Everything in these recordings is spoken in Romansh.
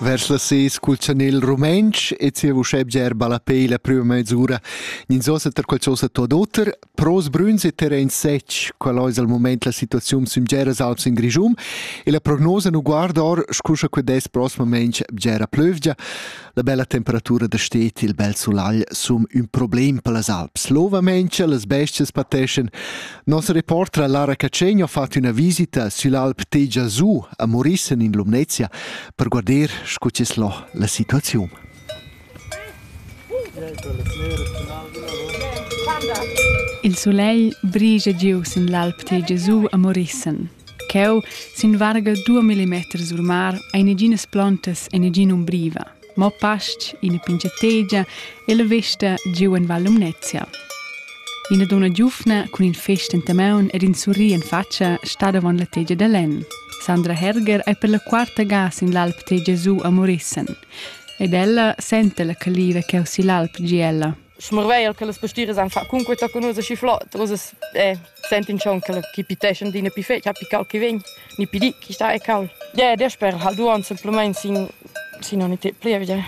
Vers las ses cul chanel rumentsch e sia vuschè bger ballapei la prüma mezzura. Ninzosa tar qualchosa tuot oter, pros brüns e terrain sech, qual ais al moment la situaziun sün bgeras alps in Grischun, e la prognosa nu guarda or, scuscha que dess prosmament bgera plövgia. La bella temperatura da stet il bel sulagl sum ün problem per las Alps. L'ovamente las bestias pateschan. Nos reportra Lara Cacegno ha fatto una visita sull'Alp Tegia Su a Morissen in Lumnezia per guardar scu c'es lo la situazione. Il soleil brige giu sin l'Alp Tegia Su a Morissen. Cheu, sin varga dua millimeters sul mar, ein neginas plontas e negin'umbriva, mo pastg, ina pinchategia e la vesta giu en Val Lumnezia. Ina donna giuvna cun in fest enta maun ed in surri en fatscha stat avon la tegia da lenn. Sandra Herger ei per la quarta ga sin l'alp tegia giu a Morissen. Ed ella senta la caliva cheu sigl alp gie ella. schmarveir che las pastiras han fatg cunquei tochen ussa schi flot, ussa eh, sentin schon che chi piteschan d'ina pi fetg, pi cal che vegn, ni pi di chi sta e cal. Yeah, der sper hal duon simplement sin sin oni te plievgia.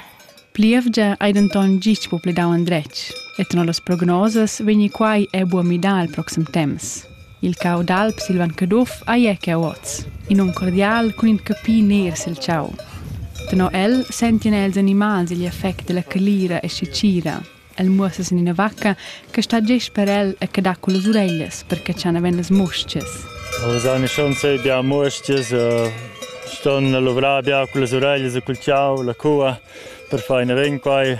Plievgia ei denton gist po pledau andretg, et no las prognosas vegni quai e buo midar al proxim temps. Il cau d'alp Silvan Caduff ei eca oz. In um cordial cun in capi ner sil tgau. Tenor el sentien els animals igl effect dalla calira e secira. El muossa sin ina vacca che stat gest per el e che dat con las ureglias per catschar naven las mustgas. Nus ein schon sei bia mustgas, ston luvrar bia con las ureglias e col tgau, la cua per far ina vin quai.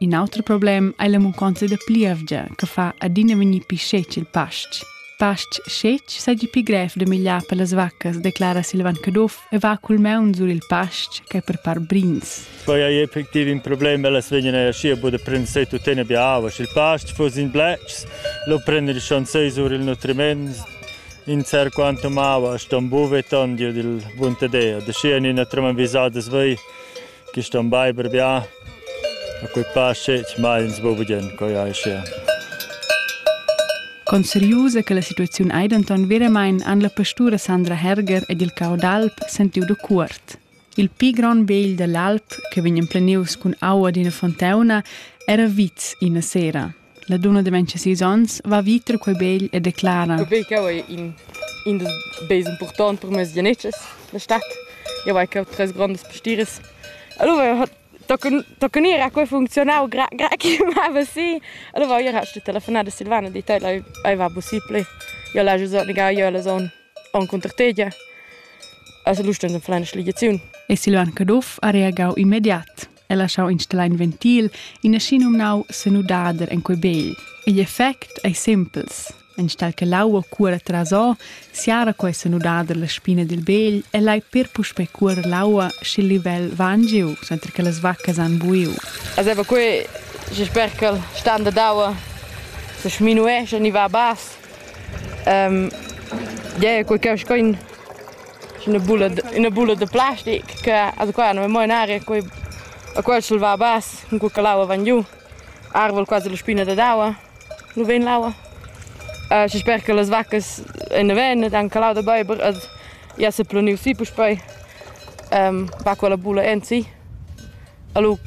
In auter problem ei la munconza da plievgia che fa adina vegnir pli scetg il pastg. Pastg scetg seigi pli grev da migliar per las vaccas, declara Silvan Caduff e va cul maun sur il pastg ch'ei per part brins. Poi ei effectiv in problem, ellas vegnan eir schi a bod a prender se tuttina bia aua, sch'il pastg fuss in bletschs, lo prender il chanzei sur il nutriment in ser quantum aua ston buveton giu dil buntadea, da schi en ina treman visadas vei Quist on baiver bia, a quei pass scetg mai ins bo vegien, coi ei sia. Conseriusa che la situaziun ei denton veramein han la pastura Sandra Herger ed il cau d'alp sentiu da cuort. Il pli grond begl dall'alp, che vegn emplenius cun aua d'ina fonteuna, era vits ina sera. La dunna de 26 onns va viter quei begl e declara: Quei cheu ei in, in dus beis impurtont per mes genetschs, la stat. Jeu vai cheu tres grondas pastires. Allora tochen ir ha quei funzionau gra, gra che mava si. Allora ier ha sto telefonar a Silvana e dit, ei, ei va possibile. Io la giu negar, io la son on contr tegia. Also lustens en fleina schligiziun. E Silvan Caduff ha reagau immediat. e laschau installar in ventil, ina schinumnau senudader en quei begl. Igl effect ei simpels. Enstall che l'aua cuora trasò, siara quei senudader la spina dil begl e lai per puspei cuorer l'aua sch'il livel va angiu, senza che las vaccas han buiu. Azeva quei, je sper che il standard d'aua se sminuesce e ni va a bass. Um, yeah, quei che sco in Üna bula üna bula da plastic che a qua no amo in aria, quei a quel s'el va bas cun cur che l'aua van giu. Arvol quasi la spina dad aua nu vegn l'aua. Schi sper che las vaccas ein na ven ed han calau da beiber ed i esa planiu si puspei, va quella bula ensi. E lu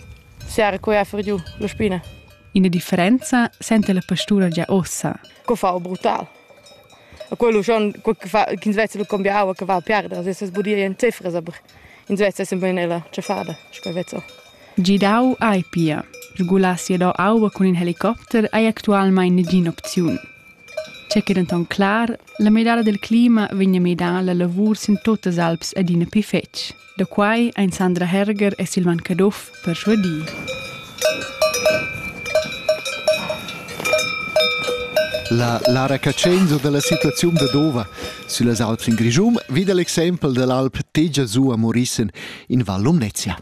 siara quei a fer giu la spina. Ina differenza senta la pastura gia ussa. Co fa brutal. quello schon ch'ins vezza lu cambiau aua che val piarder se sbudir en cefras aber ins vezza sempre nella cefada sco vezzo Gidau ei pia Regulassi dau aua cun in helicopter ei actualmein negin'opziun. C'è che denton clar, la medala del clima vegna medala lavur sin totas alps adina pi fetg. Da quai ein Sandra Herger e Silvan Caduff perschuadì. La Lara Cacenzo dalla situaziun da Dova süllas Alps in Grischun vid l'exempel dall'alp Tegia su a Morissen in Val Lumnezia.